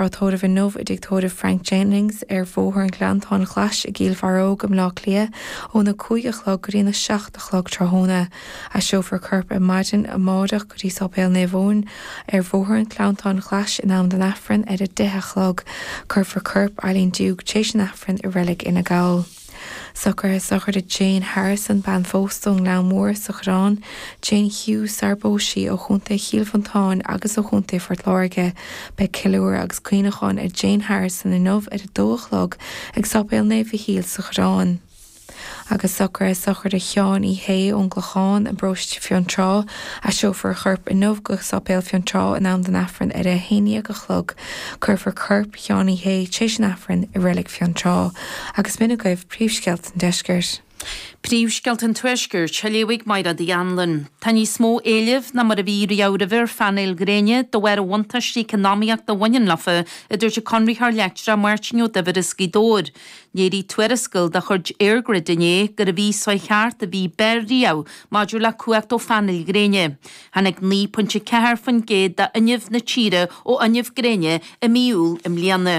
Tá tórramh inniu i dTigh Tórraimh Frank Jennings ar Bhóthar an Ghleanntáin Ghlais i gCíll Bharróg i mBleá Cliath óna cúig a chlog go dtí na seacht a chlog tráthnóna. Aistreofar a corp ar maidin amáireach go dtí Sáipéal Naomh Eoin ar Bhóthar an Ghleanntáin Ghlais in am don Aifreann ar a deich a chlog. Cuirfear corp Eileen Duke tréis an Aifrinn i Reilig Fhine Gall. Socruithe sochraide Jane Harrison, bean phósta ón nGleann Mór sa Choireán, Jane Hughes, sarar phós sí ó Chontae Chill Mhantáin agus ó Chontae Phort Láirge. Beidh ceiliúradh agus cuimhneachán ar Jane Harrison inniu ar a dó a chlog ag Sáipéal Naomh Mhichíl sa Choireán. Agus socruithe sochraide Sheáin Uí Shé ón gClochán i bparóiste Fionntrá, aistreofar a chorp inniu go Sáipéal Fionntrá in am don Aifreann ar a 11 a chlog. Cuirfear corp Sheáin Uí Shé tréis an Aifrinn i Reilig Fionn Trá, agus b'in agaibh príomhscéalta an Deiscirt. Príomhscéalta an Tuaiscirt, á léamh ag Máire D. Anluain. Tá níos mó éilimh ná mar a bhí riamh roimhe ar phainéil ghréine de bharr an bhuntáistí eacnamaíochta a bhaineann leofa, a dúirt an Conraitheoir Leictreach Máirtín Ó Duibhir as Gaoth Dobhair. Léirigh tuarascáil de chuid EirGrid inné gurbh í an mhí seo a chuaigh thart an mhí ab fhearr riamh maidir le cumhacht ó phainéil ghréine. Tháinig 9.4% d'fhuinneamh na tíre ó fhuinneamh gréine i mí Iúil i mbliana.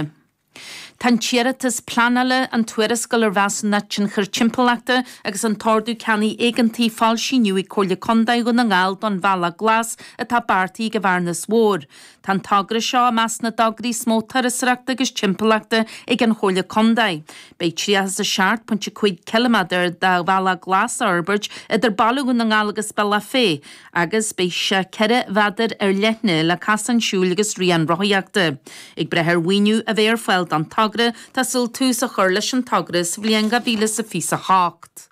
Tá an t-iarratas pleanála, an tuarascáil ar mheasúnacht tionchair timpeallachta agus an t-ordú ceannaigh éigeantaigh foilsithe inniu ag Comhairle Contae Dhún na nGall don Bhealach Glas atá beartaithe ag an Bhearnas Mhór Tá an togra seo i measc na dtograí is mó turasóireachta agus timpeallachta ag an Chomhairle Contae. Beidh 37.5 ciliméadar de bhealach glas á fhorbairt idir Baile Dhún na nGall agus Bealach Féich agus beidh sé 4 mheadar ar leithne le casáin siúil agus rian rothaíochta. Ag brath ar mhaoiniú a bheith ar fáil don togra, tá súil tús a chur leis an togra sa bhliain 2028.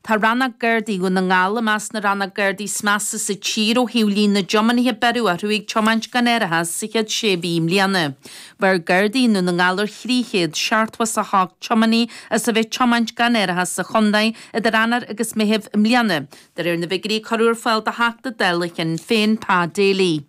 Tá Rannóg Gardaí Dhún na nGall i measc na rannóg gardaí is measa sa tír ó thaobh líon na dtiománaithe a beireadh orthu ag tiomáint gan árachas sa chéad sé mhí i mbliana. Bheir Gardaí i nDún na nGall ar 378 tiománaí as a bheith tiomáint gan árachas sa chontae idir Eanáir agus Meitheamh i mbliana, de réir na bhfigirí a cuireadh ar fáil do Theachta Dála Shinn Féin, Pa Daly.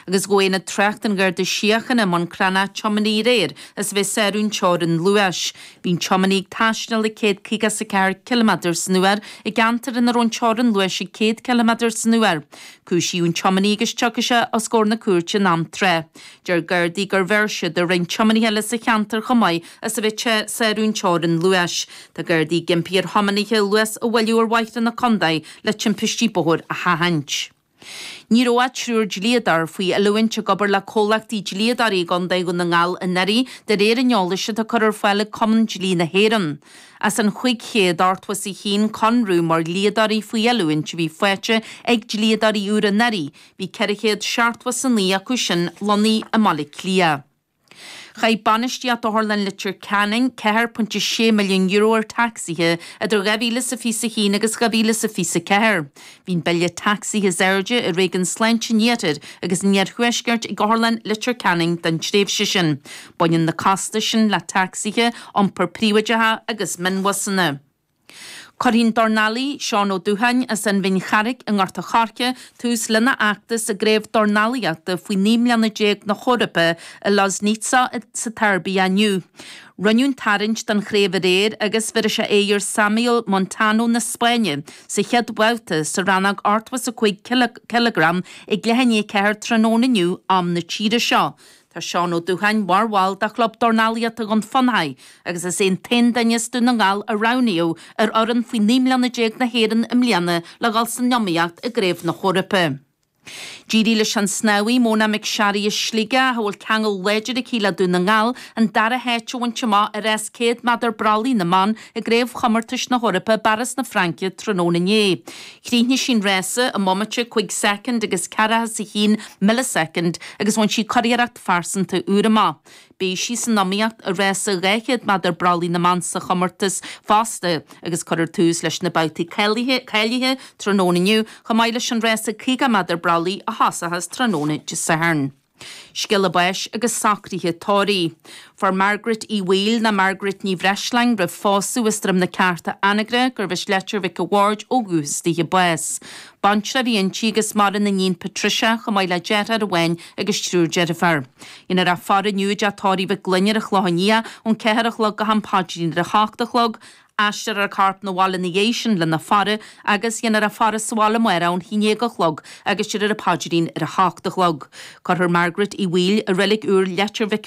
Agus ghabh Aonad Tráchta an Gharda Síochána i mBun Cranncha tiománaí aréir as a bheith ag sárú an teorainn luais. Bhí an tiománaí ag taisteal ag 154 ciliméadar san uair i gceantar ina raibh an teorainn luais ag 100 ciliméadar san uair. Cúisíodh an tiománaí agus tiocfaidh sé os comhair na cúirte in am tráth. Deir Gardaí gur bheir siad ar roinnt tiománaithe eile sa cheantar chomh maith as a bheith ag sárú an teorainn luais. Tá Gardaí ag impí ar thiománaithe luas a mhoilliú ar bhóithre na condae le timpistí bóthair a sheachaint. Ní raibh ach triúr dlíodóir faoi oiliúint ag obair le comhlachtaí dlíodóirí i gContae Dhún na nGall anuraidh, de réir an eolais atá curtha ar fáil ag Cumann Dlí na hÉireann. As an chúig chéad ochtó is a haon conradh mar dhlíodóirí faoi oiliúint a bhí faighte ag dlíodóirí úra anuraidh, bhí ceithre chéad seachtó is a naoi acu sin lonnaithe i mBaile Átha Cliath. Chaith bainistíocht Otharlann Leitir Ceanainn €4.6 milliún ar tacsaithe idir 2021 agus 2024. Bhí an bille tacsaithe is airde i réigiún sláinte an iarthair agus an iarthuaiscirt ag Otharlann Leitir Ceanainn don tréimhse sin. Baineann na costais sin le tacsaithe, iompar príobháideach agus mionbhusanna. Cuirfidh an dornálaí Seán Ó Dubhcháin as an Bhinn Charraig i nGort a' Choirce tús lena fheachtas i gCraobh Dornálaíochta faoi naoi mbliana déag na hEorpa i Loznica sa tSeirbia inniu. Rinneadh an tarraingt don chraobh aréir agus bhéarfaidh sé aghaidh ar Samuel Montano na Spáinne sa chéad bhabhta sa rannóg ochtó is a cúig cileagram ag leath i ndiaidh a ceathair tráthnóna inniu am na tíre seo Tá Seán Ó Dubhcháin mar bhall de Chlub Dornálaíochta Dhún Fionnáin agus is é an t-aon duine as Dún na nGall a roghnaíodh ar fhoireann faoi 19 mbliana na hÉireann i mbliana le dhul san iomaíocht i gCraobh na hEorpa. D'éirigh leis an snámhaí Mona McSharry as Sligeach, a bhfuil ceangal láidir aici le Dún na nGall, an dara háit a bhaint amach i rás 100 méadar brollaigh na mban i gCraobhchomórtais na hEorpa i bPáras na Fraince tráthnóna inné. Chríochnaigh sí an rása i mbomaite cúig soicind agus ceathracha is a haon milleasoicind agus bhain sí curiarracht phearsanta úr amach. Beidh sí san iomaíocht i rása 200 méadar brollaigh na mban sa chomórtas fosta agus cuirfear tús leis na babhtaí cáilithe tráthnóna inniu chomh maith leis an rása 50 méadar brollaigh a thosóchas tráthnóna Dé Sathairn. Scéala báis agus socruithe tórraimh. Fuair Margaret Uí Bhaoill, nó Margaret Ní Bhreisleáin, roimh phósadh as Droim na Ceárta, Anagaire, gurbh as Leitir Mhic a' Bhaird ó dhúchas daoithe bás. Baintreach a bhí inti agus maireann a níon Patricia, chomh maith le deartháir amháin agus triúr deirfiúr. Déanfar a faire inniu i dteach tórraimh Mhic Fhloinn ar an Chlochán Liath ón ceathair a chlog go ham paidrín ar a hocht a chlog, Aistreofar an corp 'na bhaile ina dhiaidh sin lena faire agus déanfar a faire sa bhaile amárach ón haon déag a chlog agus déarfar an paidrín ar a hocht a chlog. Cuirfear Margaret Uí Bhaoill, i reilig úr, Leitir Mhic a.